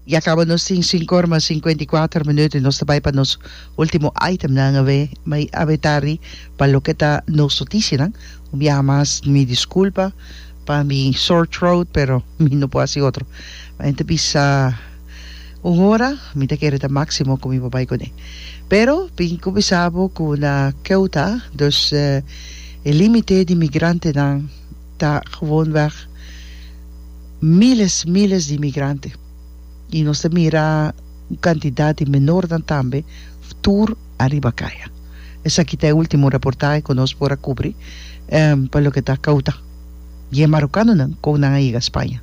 Ya caba nos tin sincor mas cincuenta y cuater minuut y nos ta bay pa nos ultimo itemnan awe, ma y awe tardi pa loke ta nos noticianan. Un biaha mas mi disculpa pa mi sore throat pero mi no por haci otro. Mi enta bisa un hora mi ta kere ta maximo cu mi por bay cune. Pero tin cu bisa bo cu na Ceuta, dus e limite di migrantenan, ta gewonweg miles, miles di inmigrante y nos ta mira un cantidad di menornan tambe tur ariba caya. Esaki ta e ultimo reportahe cu nos por a cubri pa loke ta Ceuta. Y e marocanonan con nan a yega Spaña.